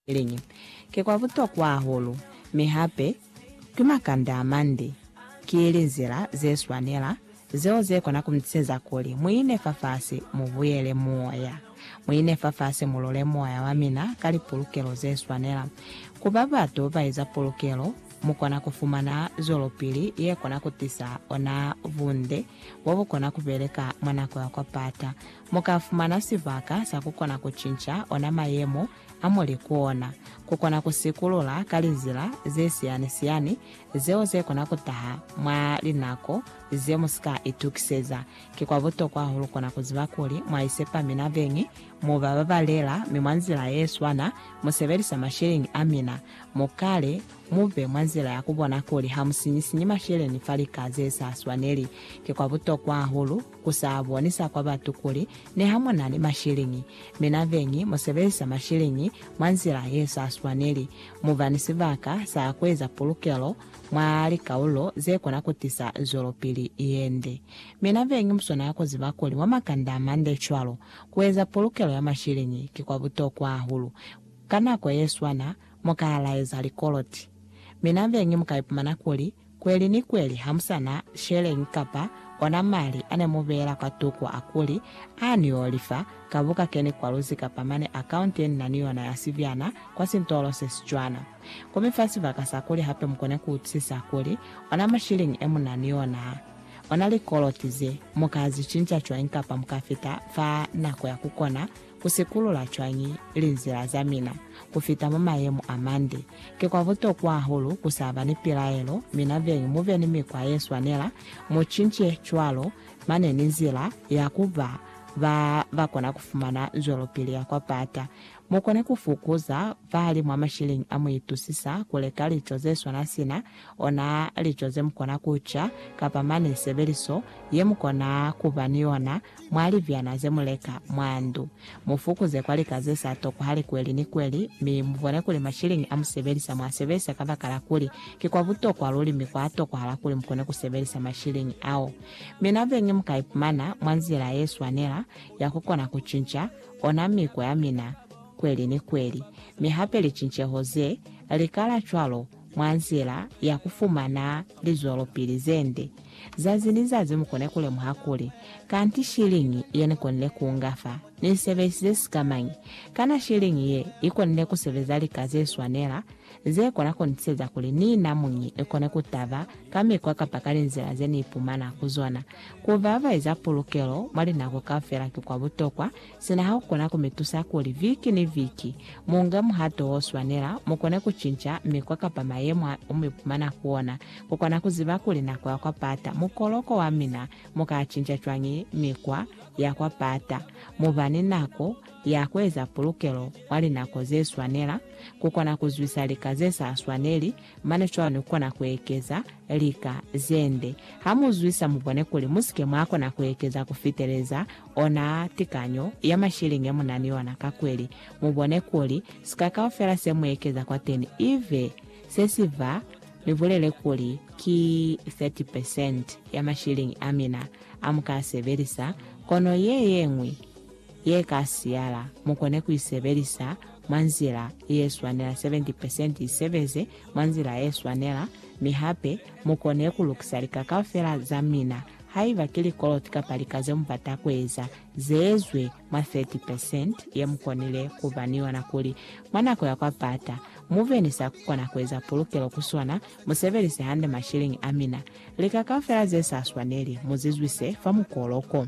Liñi? Ki kwa butokwa hahulu, mi hape ki makanda amande. Ki linzila ze swanela zeo ze kona ku mi tiseza kuli mu ine fafasi, mu buyele moya. Mu ine fafasi mu lule moya wa mina ka lipulukelo ze swanela. Ku ba batu ba eza pulukelo, mu kona ku fumana zwelopili ye kona ku tisa ona bunde bo bu kona ku beleka mwa nako ya kwa pata, Mu ka fumana sibaka sa ku kona ku cinca ona mayemo a mo li ku ona, ku kona ku sikulula ka linzila ze siyani-siyani zeo ze kona ku taha mwa linako ze mu si ka itukiseza. Ki kwa butokwa hahulu kona ku ziba kuli mwa isepa mina beñi, mu ba babalela, mi mwa nzila ye swana mu sebelisa masheleñi a mina. Mu kale mu be mwa nzila ya ku bona kuli ha mu sinyi-sinyi masheleñi fa lika ze sa swaneli. Ki kwa butokwa hahulu Ku sa bonisa kwa batu kuli ne ha mu na ni masheleñi, mi na beñi mu sebelisa masheleñi mwa nzila ye sa swaneli, mu ba ni sibaka sa ku eza pulukelo mwa likaulo ze kona ku tisa zwelopili ye nde. Mi na beñi mu swanela ku ziba kuli mwa makanda a mande cwalo, ku eza pulukelo ya masheleñi ki kwa butokwa hahulu. Ka nako ye swana, mu ka laeza likoloti. Mi na beñi mu ka ipumana kuli Kweli ni kweli hamusana sheleñi kapa ona mali ane mubeela kwa tokwa a kuli, Ani yo lifa ka buka keni kwa luzi kapa mane account ye nina ni yona ya sibyana kwa sintolo se si cwana. Ku mi fa sibaka sa kuli hape mukone ku utusisa kuli, ona mashilingi e muna ni ona, ona likoloti ze, mu ka zi cinca cwañi kapa mu ka fita fa nako ya ku kona Ku sikulula cwañi linzila za mina ku fita mwa mayemo a mande? Ki kwa butokwa hahulu ku sa ba ni pilaelo, mi na beñi mu be ni mikwa ye swanela. Mu cince cwalo, mane ni nzila ya ku ba ba ba kona ku fumana zwelopili ya kwa pata. Mu kone ku fukuza vali mwa mashilling a mu itusisa ku leka lico ze swana sina Ona lico zemukona kuca, kapa mane sebeliso yemukona kuba ni yona mwa libyana zemuleka mwa ndu. Mufukuze kwa lika zesa toko hali kweli ni kweli, mi mubone kuli mashilingi amusebelisa mwasebelisa kabakala kuli ki kwa butokwa luli mi kwa tokohala kuli mukone kusebelisa mashilingi ao. Mi nabeñi mukaipumana mwa nzila yeswanela ya kukona kucinca ona miko yamina kweli ni kweli, mi hape licinceho ze likala cwalo mwa nzila ya ku fumana lizwelopili ze nde. Zazi ni zazi mu kone ku lemuha kuli, Kanti shiliñi ye ni konile ku nga fa ni sebelisize sika mañi? Kana shiliñi ye i konile ku sebeza lika ze swanela, ze kona ku ni tiseza kuli ni na muñi ni kone ku taba ka mikwa kapa ka linzila ze ni ipumana ku zona? Ku vavaeza pulukelo mwa linako kaufela ki kwa butokwa, Sina ha u kona ku mi tusa kuli viki ni viki mu nge muhato wo swanela, mu kone ku cinca mikwa kapa mayemo a mu ipumana ku ona, ku kona ku ziba kuli nako ya kwa pata mukoloko wa mina mu ka cinca cwañi mikwa ya kwa pata, mu ba ni nako ya ku eza pulukelo mwa linako ze swanela, ku kona ku zwisa lika ze sa swaneli, mane cwalo ni ku kona ku ekeza lika ze nde. Ha mu zwisa, mu bone kuli mu si ke mwa kona ku ekeza ku fiteleza Ona tikanyo ya mashiling ye mu na ni yona kakweli mu bone kuli sika kaufela se mu ekeza kwateni ive se si fa, mi bulele kuli ki 30 percent ya mashiling a mina a mu ka a sebelisa, kono ye ye ñwi ye ka siyala mu kone ku i sebelisa mwa nzila ye swanela. 70 percent i sebeze mwa nzila ye swanela, mi hape mu kone ku lukisa lika kaufela za mina Haiba ki likoloti kapa lika ze mu bata ku eza, ze ezwi mwa 30 percent ye mu konile ku ba ni yona kuli mwa nako ya kwa pata mu be ni sa ku kona ku eza pulukelo ku sona, mu sebelise hande mashilingi a mina. Lika kaufela ze sa swaneli mu zi zwise fa mukolo ko.